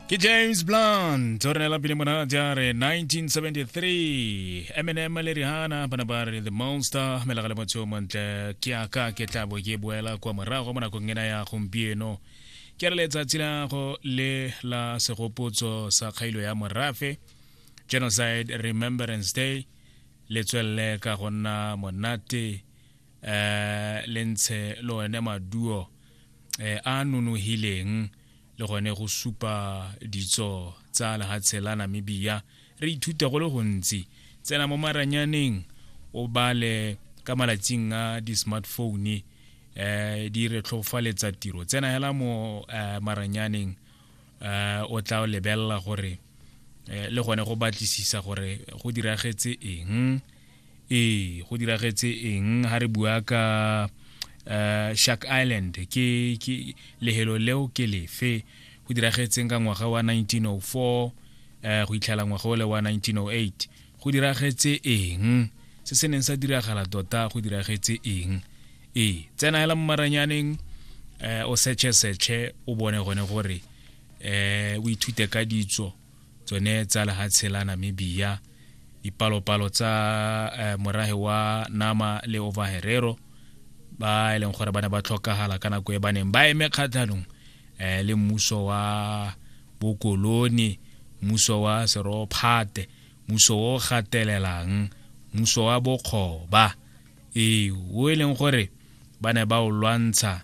ke james blunt o re neela pele monate a re 1973 eminem le rihana ba ne ba re the monster melega le motho yo montle ke aka ke tla bo ke boela kwa morago mo nakong ena ya gompieno ke re letsatsi la go le la segopotso sa kgailo ya morafe genocide remembrance day le tswelele ka go nna monate eh le ntshe le one maduo eh a nonogileng le gone go supa ditso tsa lehatshe la namibia re ithuta go le gontsi tsena mo maranyaneng o bale ka malatsing a di-smartphone eh di re tlhofaletsa tiro tsena hela mo eh, maranyaneng eh o tla lebelela gore eh, le gone go batlisisa gore go diragetse eng ee go diragetse eng ha re bua ka uh, shark island ke, ke lehelo leo ke lefe go diragetseng ka ngwaga wa 1904 uh, eh, go itlhela ngwaga ole wa 1908 go diragetse eng se se neng sa diragala tota go diragetse eng ee tsena hela mo maranyaneng um o setshe setshe o bone gone gore um o ithute ka ditso tsone tsa lehatshe la namibia dipalopalo tsa eh, morahe wa nama le overherero ba e leng gore ba ne ba tlhokagala ka nako e ba neng ba eme kgatlhanong eh, le mmuso wa bokoloni mmuso wa serophate mmuso o gatelelang mmuso wa bokgoba ee o e leng gore ba ne ba o lwantsha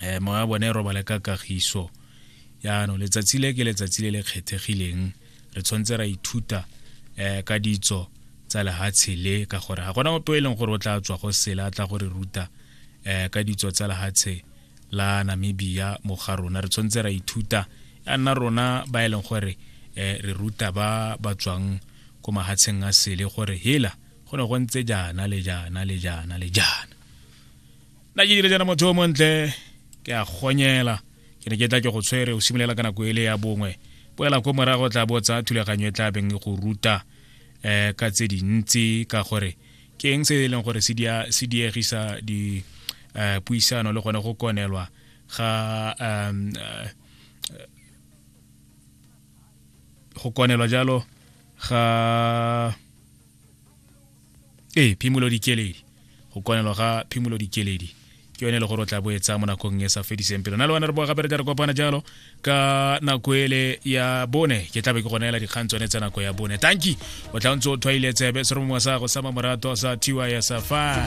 eh moya wa bone e robale ka kagiso yaanong letsatsi le ke letsatsi le le kgethegileng re tshwanetse ra ithuta eh ka ditso tsa lehatshe le ka gore ga gona ope e leng gore o tla tswa go sela tla gore ruta eh ka ditso tsa lehatshe la Namibia mo ga rona re tshwanetse ra ithuta ya nna rona ba e leng gore eh re ruta ba ba tswang ko mahatsheng a sele gore hela go ne go ntse jaana le jaana le jaana le jaana nna ke dire jana motho o montle ke a gonyela ke ne ke tla ke go tshwere o simolola ka nako ele ya bongwe boela ko morago tla bo tsa thulaganyo e tla beng e go ruta um ka tse dintsi ka gore ke eng se e leng gore se diegisa di um puisano le gone go konelwa ga um go konelwa jalo ga ee phimolo dikeledi go konelo ga phimolo dikeledi ke yone e le gore o tla bo e tsaya mo nakong e sa fediseng pelo na le bana re boa gape re tla re kopana jalo ka nako ele ya bone ke tlabe ke gona ela dikgang tsone tsa nako ya bone tanki o tla ntse o thwaile tsebe se re mongwe sa go sa mamorato sa tys fa